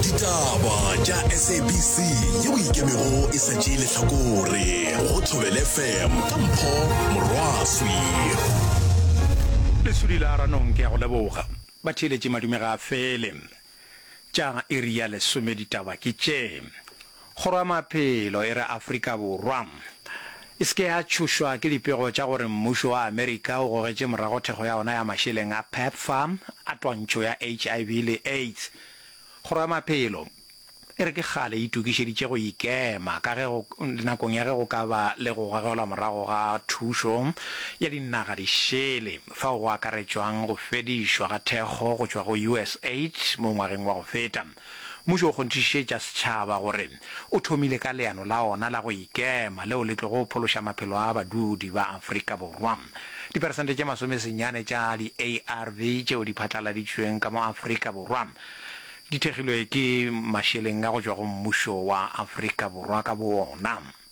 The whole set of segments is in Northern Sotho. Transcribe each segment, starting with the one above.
ditaba tša sabc yeo ikemego e sa tšee lehlakore go thobele fm ka mpho morwaswi lesudi la ranong ke ya go leboga batheeletši madume ga a fele tša iri ya lesome ditaba ke tše Kgoro ya Maphelo e re Afrika Borwa e se ke ya tšhošwa ke dipego tša gore mmušo wa Amerika o gogetše morago thekgo ya ona ya mašeleng a Pepfar a twantšho ya HIV le AIDS. Kgoro ya Maphelo e re ke kgale e itokišeditše go ikema ka ge go nakong ya ge go ka ba le go gogelwa morago ga thušo ya dinaga di šele fao go akaretšwang go fedišwa ga thekgo go tšwa go USAID mo ngwageng wa go feta. Mmušo o kgonthišišetša setšhaba gore o thomile ka leano la ona la go ikema leo le tlogo phološa maphelo a badudi ba Afrika Borwa. Diperesente tše masomesenyane tša di-ARV tšeo di phatlaladitšweng ka mo Afrika Borwa di thekgilwe ke mašeleng a go tšwa go mmušo wa Afrika Borwa ka boona.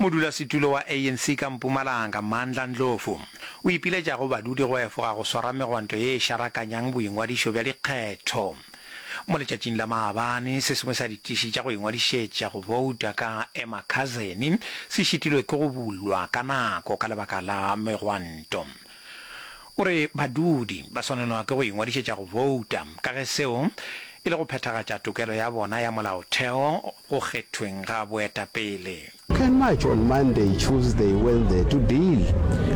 Modulasetulo wa ANC ka Mpumalanga, Mandla Ndlovu, o ipiletša go badudi go efoga go swara megwanto ye e šarakanyang boingwadišo bja dikgetho. Mo letšatšing la maabane, se sengwe sa ditiši tša go ingwadišetša go bouta ka Emakhazeni se šitilwe ke go bulwa ka nako ka lebaka la megwanto. O re badudi ba swanelwa ke go ingwadišetša go bouta ka ge seo e le go phethagatša tokelo ya bona ya molaotheo go kgethweng ga boetapele. You can march on Monday, Tuesday, Wednesday to deal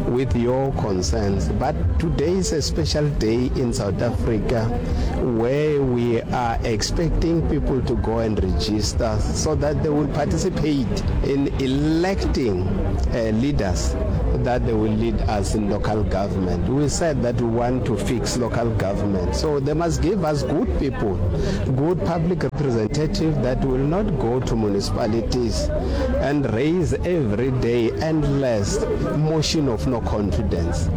with your concerns but today is a special day in South Africa where we are expecting people to go and register so that they will participate in electing leaders that they will lead us in local local government we said that we want to fix local government so they must give us good people good public representative that will not go to municipalities and raise every day endless motion of no confidence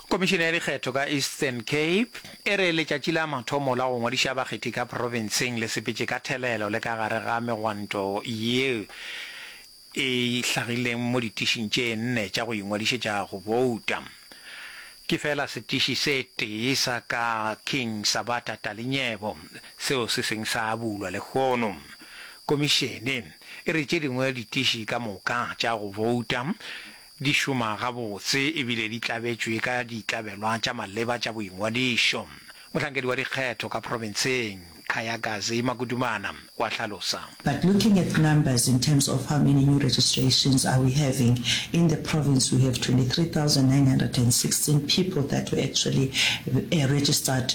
Komišene ya dikgetho ka Eastern Cape e re letšatši la mathomo la go ngwadiša bakgethi ka profenseng le sepetše ka thelelo le ka gare ga megwanto ye e hlagileng mo ditišing tše nne tša go ingwadišetša go bouta. Ke feela setiši se tee sa ka King Sabata Talinyebo seo se seng sa bulwa lehono. Komišene e re tše dingwe ditiši ka moka tša go bouta di šoma gabotse e bile di tlabetšwe ka ditlabelwa tša maleba tša boingwadišo, mohlankedi wa dikgetho ka profenseng, Kgayagazi Makudumana, o a hlalosa. But looking at numbers in terms of how many new registrations are we having, in the province we have 23,916 people that were actually registered.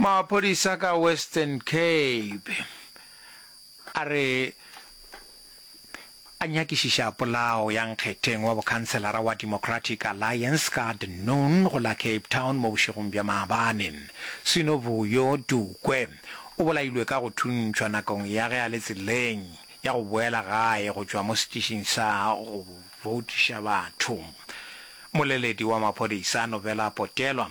Maphodisa ka Western Cape a re a nyakišiša polao ya nkgetheng wa bokhanselara wa Democratic Alliance ka the noon go la Cape Town mo bošegong bja maabane. Sinovuyo Dukwe o bolailwe ka go thuntšhwa nakong ya ge a le tseleng ya go boela gae go tšwa mo setišing sa go voutiša batho. Moleledi wa maphodisa Novela Potelwa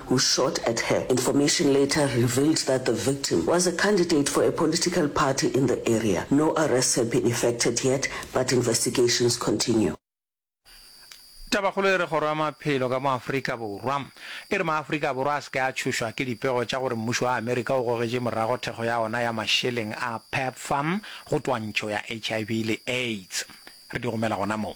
who shot at her. Information later revealed that the victim was a candidate for a political party in the area. No arrests have been effected yet but investigations continue. Tabakgolo e re Kgoro ya Maphelo ka mo Afrika Borwa e re maAfrika Borwa a se ke a tšhošwa ke dipego tša gore mmušo wa Amerika o gogetše morago thekgo ya ona ya mašeleng a PEPFAR go twantšho ya HIV le AIDS. Re di romela gona mo.